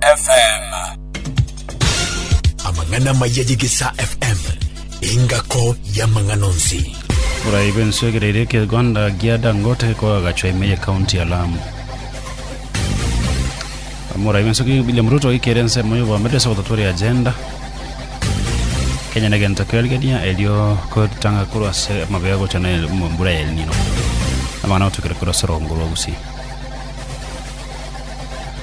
FM. Amang'ana amaya y'Egesaa FM, engako y'amang'ana onsi. Borai bw'ense egereire ekegonda gia Dangote koagachwa ime y'ekaunti ya Lamu. Morai bw'ense ki- William Ruto oikere ensemo y'oboamete ase ogototwera agenda. Kenya negento kerigania erio kotanga korwa ase amabia gocha na el- mu- mbura ya El Nino. Amang'ana agotokera korwa ase orogombo rwa Gusii.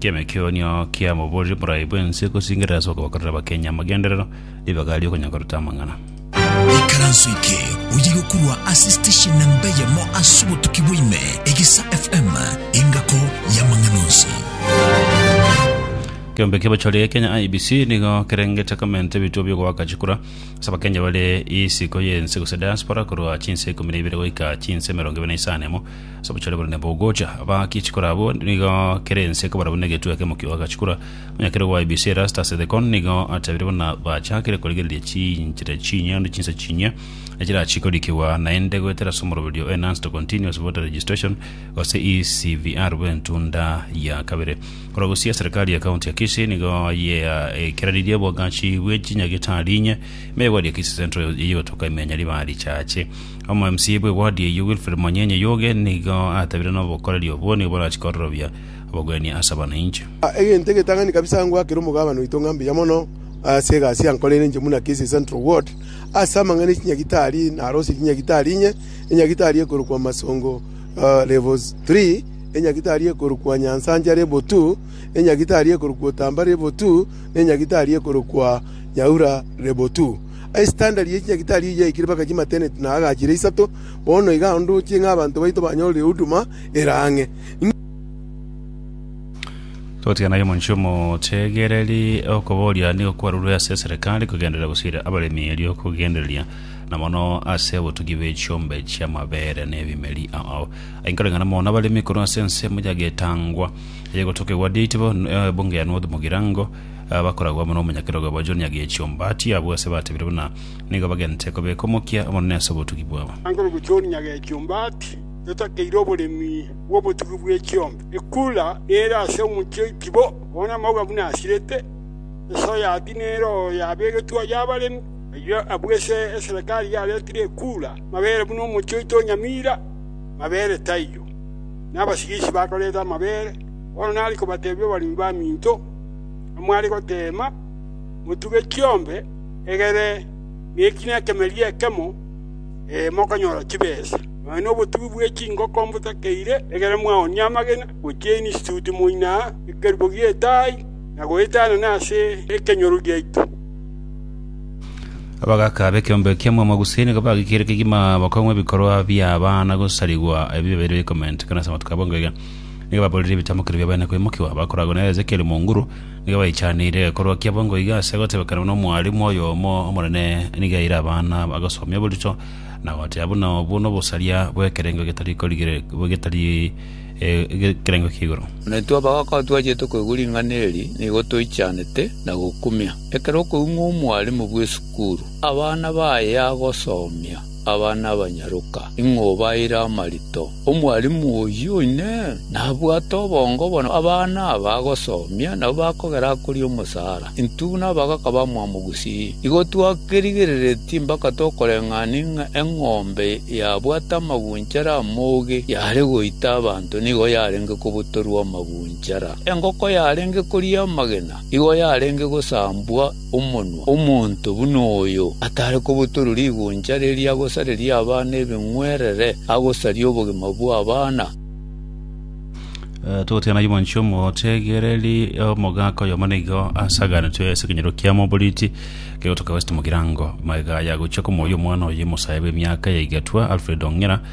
Ki'emekeonio kia moboreri morai bw'ense gosingerera ase okobakorera abakenyi amagenderero, ribaga ri'okonyakoreta amang'ana. Ikaranso eke oye gokurwa ase station namba eyemo ase obotuki bwaime, Egesa FM, engako y'amang'ana onsi. Keombe ki'abachore Kenya IEBC nigo kerengete komenta ebituo biogoaka chikura ase abakenyi bare isiko y'ense gose diaspora korwa chinse ikomi na ibere goika chinse emerongo ebere na isano emo Ase obochore bore nabogocha, abaaki echikora abwo nigo kera ense ekobara buna egetwe ekemo ki'ogoaka chikora. Omonyakerero bwa IEBC Erastus Ethekon nigo atabire buna bachakire korigereria chinchera chinyia onde chinsa chinyia echirachi korikigwa naende goetera ase omoroberio o Enhanced Continuous Voter Registration gose ECVR bw'entunda ya kabere. Korwa gosii eserikari ya county ya Kisii nigo yaekeranirie obwagachi bwe chinyagitari inye, ime egweria Kisii Central eyigotoka ime ya Nyaribari chache. Omomsibi bwe ward eyio Wilfred Monyenye Yuge nigo atabire nobokoreri obwo nigo borachie kororobia obogwenia ase abananchi. Egento egetang'ani kabisa ngwakera omogabana oito ng'a mbuya mono ase egasi yankoreire inche buna Kisii Central Ward ase amang'ana echinyagitari narosie chinyagitari inye, enyagitari ekorokwa Masongo level three, enyagitari ekorokwa Nyansancha level two, enyagitari ekorokwa Otamba level two, na enyagitari ekorokwa Nyaura level two. Ase chitanda chiria chinyagitari oyio yaikire mpaka chimateneti na agachire isato. Bono iga ndoche ng'a abanto baito banyorire huduma ere ang'e. Togotigana aye omonche omotegereri, okoboria nigo kwarurwe ase eserekari kogenderera gose ire abaremi erio kogendereria, na mono ase obotugi bwe chiombe chi'amabere na ebimeri. Ao ainkoreng'ana mono abaremi korwa ase ensemo yagetangwa, eyegotokegwa Deitebo, Ebunge ya North Mugirango, abakoragwa amo n'omonyakerogo obo John Nyagechio Mbati abwo ase batebire buna nigo bagenete kobeka omokia omonene ase obotugi bwabo. Akorokwa John Nyagechio Mbati yotakeire oboremi bw'obotugi bwe chiombe. Ekura nere ase omochie oitibo, bono amauga buna asirete, esoya ati nero yabegetwe ay'abaremi. Ayio abwo ase eserekari yaretire ekura mabere buna omochie oito o Nyamira mabere taiyo. Nabasigichi bakorete amabere, bono nari kobatebia obaremi baminto. amware goteema, motuge chiombe egere nekina ekemeria ekemo, ee, mokonyora chibesa. Nonya nobotugi bwe chingoko mbotakeire egere mwaoonie amagena gochia Institute moina ekerubo gi'etaai na goetanana ase ekenyoro giaito. Abagaaka b'ekeombe kia Mwamagusii nigo bagekire kegima bakong'wa ebikorwa bi'abana gosarigwa ebibe bire bikomentekana ase amatuko abo engo iga. nigo baborire ebitamokero bia baene koimokigwa, bakoragwa na Ezekieli monguru, nigo baichaneire egekorwa kiabo ngoiga ase gotebekanwa n'omwarimu oyomo omonene nigo aire abana bagosomia oborito, na goteba buna obwo nobosaria bw'ekerengo getari korigire getari eh, ekerengo ki'igoro. Na intwe abagaaka twachete koigwa ring'ana eri, nigo toichanete na gokumia. Ekero okoigwa ng'a omwarimu bw'esukuru abana baye agosomia, Abana abanyaroka, ing'o obaeire amarito? Omwalimu oyio Inee! Nabwate obongo bono abana aba agosomia nabo bakogera akoria omosaara? Intwe nabagaka bamwabo gusii? Igo twakerigereretie mpaka tokoreng'ania ng'a eng'ombe yabwate amagunchara amoge yare goita abanto nigo yarenge kobutorwa amagunchara, engoko yarenge koria amagena igo yarenge gosambwa, omonwa omonto buna oyo, atare kobotorwa rigoncha riria agosareria abana ebeng'werere, agosaria obogima bw'abana. Togotigana ayio mwanchwa omotegereri omogaka oyomo nigo asaganetwe ase ekenyoro kia moboriti kegotoka West Mugirango. Magega ayagochia komoyia omwana oye mosae bw'emiaka yaigetwa Alfred Ong'ira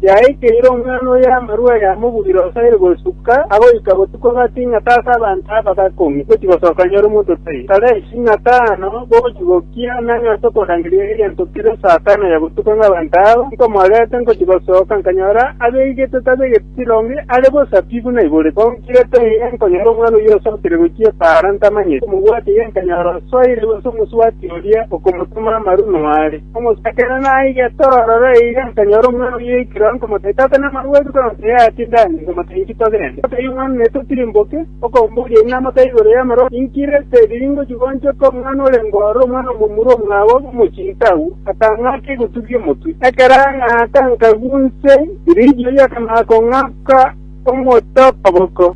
Yaikeire omwana oye amarwa aya amobugire osaire gosuka agoika botuko gati ng'a tase abanto aba gakong'e gochi gosoka nyore omonto tai. Kare isi ng'a tano bogochi gokia na ng'a ase okorangeria egento kere saa tano ya botuko ng'a abanto aba nkomorete ngochi gosoka nkanyora abeegete tabeegete chironge are bosa pi buna ibore. Konkire tai enkonyora omwana oyio osokire gochia epaara ntamanyeti. Omobwati iga nkanyora osoire gose omosubati oria okomotoma amarwa noare. Omochakera naige torore eira nkanyora omwana oyoikire oo nkomotebi, Tata namarue ase korora omotebi aye tinde ang'e, nkomotebi inki togende? Omotebi omwana naete otirimboke, okomboria inee namotebi igoro y'amaroro inki reste eriri ngochigonchoka omwana orenge ororo, omwana omomura omwabo omochiika agwo? Akang'aka egotugia omotwe. Ekero ang'aka nkagwa inse, rirorio akamanya kong'aka omote okoboko.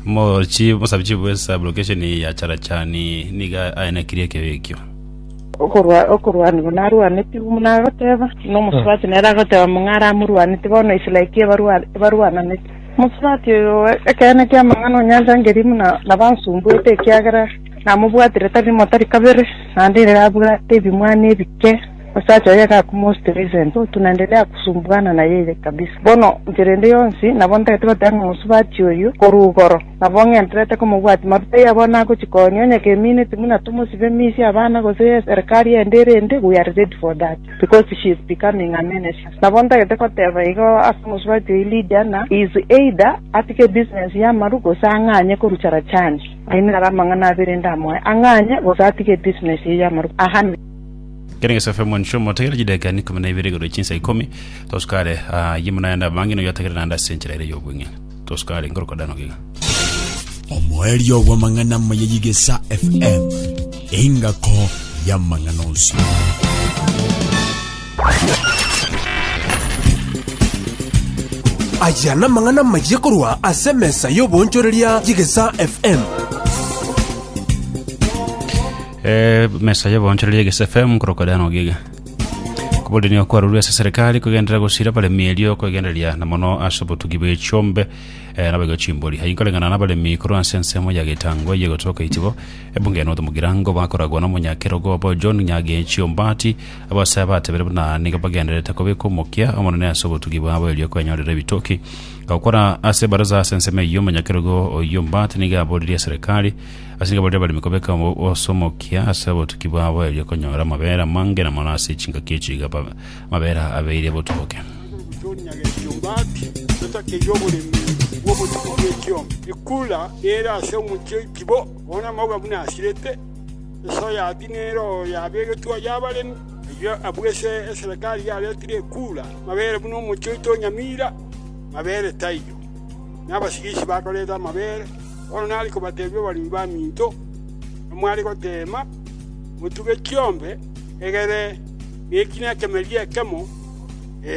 Omochi omosabichibu bw'esabu location ya Charachani niga aenekirie ekeyo ekio. Okorwa okorwanigwa narwanetigwe buna agoteba, buna omosubati nere agoteba mong'ara amorwanete bono isla eki ebarwa ebarwananete. Omosubati oyo ekeene ki'amang'ana onyanchangeri buna nabansumbuete ekiagera namobwatire tari rimo tari kabere, naende ere abwate ebimwana ebike. Osacha oye gakumosike Vincent, Tunaendelea kusumbuana na yeye kabisa. Bono enchera ende yonsi nabo ntagete goteba ng'a mosubati oyio korwa igoro, nabo ng'enterete komobwatia maruta iye abwo nagochi kooni onye keminiti buna tomosibe misia abana gose eserikari ende erinde we are ready for that because she is becoming a menace. Nabo ntagete goteba igo ase omosubati oyio Lydia ng'a he is either atige ebusiness y'amaru gose ang'anye korucha Rajani. Aye naro amang'ana abere ndamoe, ang'anye gose atige ebusiness eye y'amaru. Amen. Kera engeso efe omonche omotegere chideka ni ikomi na ibere igoro chinsa ikomi, tosukare ah, ye muna yande abange noyo atagere nande ase enchera ere y'obweng'e. Tosukare nkorokwa dano gega. Omoerio bw'amang'ana amaya y'Egesa FM, engako y'amang'ana onsi. aya namang'ana mayiye korwa ase emesa y'oboonchoreria y'egesa fm Emesa y'oboonchoreria ya Gesi FM korokwa Diana Ogiga. Oboremi okwarorwa ase serikali kogenderera gosira abaremi erio kwegendereria na mono ase obotugi bw'echiombe eh, nabo iga chimbori. Aye inkoreng'ana n'abaremi korwa ase ensemo ya Gitangwe ye gotoka Itibo, ebunge ya North Mugirango bakoragwa n'omonyakerogo obo John Nyagechi Ombati, abasaya batebire buna nigo bagendererete kobeka omokia omonene ase obotugi bwabo erio kwenyorera ebitoki. Gokora ase baraza ase ensemo eyio, omonyakerogo oyio Ombati nigo aboririe serikali Ase igabo ri'abaremi kobeka ase omokia ase abotuki babo erio konyora amabere amange na mono ase chingaki echio iga amabere abeire botuboke. Tonya gekiombaaki totakeirie oboremi bw'obotuko bw'ekiomba. Ekura ere ase omochie oitibo, bono amauga buna asirete, esoya ati nere oo yabegetwe aya abaremi. Erio abwo ase eserekari yaretire ekura mabere buna omochie oito onyamiira, mabere taiyo, na abasigichi bakorete amabere. Bono nare kobatebia abaremi b'aminto, Namware goteema, motuge chiombe egere na ekina ekemeria ekemo,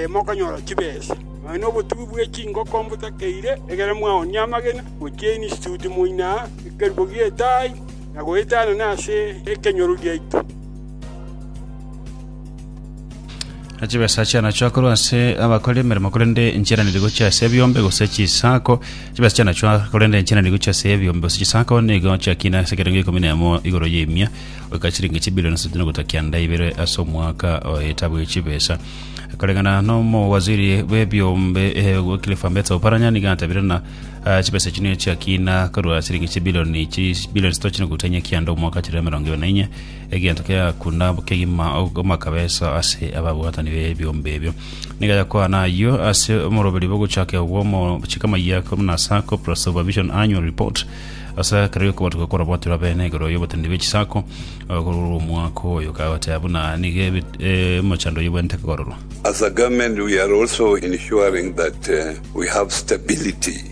mokonyora chibesa, nonya nobotugi bwe chingoko mbotakeire, egere mwaoonie amagena, gochia Instituti moino aa ekerubo gi'etaai, na goetanana ase ekenyoro giaito. chibesa chiana chiakorwa ase abakore emeremo korende enchera nigo gochia ase ebiombe gose chisako chibesa chiana chwa korende enchera nigo gochia ase ebiombe gose chisako nigo chiakina ase ekerengo ikomi na emo igoro y'emia goika chiringi chibilioni ase chituko gota kianda ibere ase omwaka oye etabu ye chibesa koreng'ana n'omowaziri bw'ebiombe eh, Wycliffe Ambetsa Oparanya nigo atabire na ah, chibesa chino chiakina korwa chiringi chibilioni chibilioni sito chituko gota kianda omwaka chire emerongo ibere na inye Egento kegakunda kegima omakabesa ase ababwatani b'ebiombe ebio. Nigo yakwana ayio ase omoroberi bw'ogochaka bw'omochika Mayako buna ase Corporate Supervision Annual Report ase ekero gi'okobatuka kwarabwatirwe abene igoro y'oboteneri bwe chisako korwa omwaka oyo, kagoteba buna nigo omochando oyio obwenerete kogororwa. As a government we are also ensuring that we have stability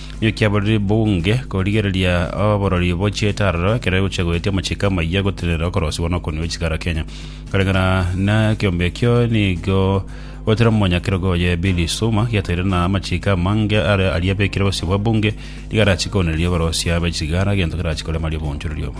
Nigo kiaborire bunge korigereria oborori bochiete aroro ekero egochia goetia amachiko amayia gotenenera okorosiwa na okoniwa chikara Kenya. Koreng'ana nekiombe ekio nigo goetire omonyakerogo oye Billy Suma giataire na amachiko amange are aria abekire gosibwa bunge nigo arachie koonereria oborosia bwechigara egento kerachie koremaria obonchorori obo.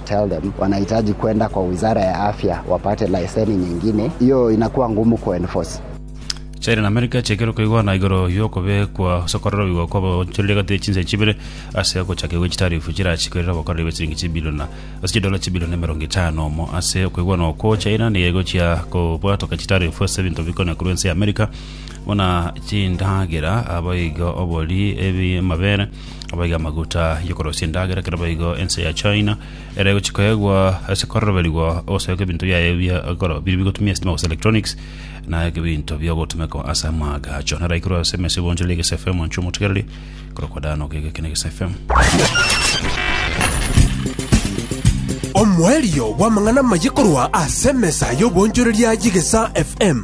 Tell them wanahitaji kwenda kwa wizara ya afya wapate laiseni nyingine, hiyo inakuwa ngumu ku enforce. China na Amerika chiakerwa koigwana igoro y'okobekwa ase kororoigwa kw'abaonchoreria egati ye chinse chibere ase ogochakigwa gwe chitarifu chirachikwe erinde obokoreri bwe chiringi chibiliona ase chidola chibilioni emerongo etano omo ase okoigwana okwo China nigo egochia kobwatoka chitarifu ase ebinto bikonya korwa ense ya Amerika buna chindagera, abaigo, obori, ebi, amabere, abaige amaguta y'okorosia endagera kero baigo ense ya China ere egochia koegwa ase kororoberigwa ogosoeka ebinto biaye bia ekoro biri bigotumia estima gose electronics na ebinto biogotumeka ase amaagacho naro aikorwa ase emesa ebwanchorire egese FM inche omotegereri korokwa Dan Ogega ekene egese FM omoerio bw'amang'ana amaye korwa ase emesa y'obonchoreria y'egesa fm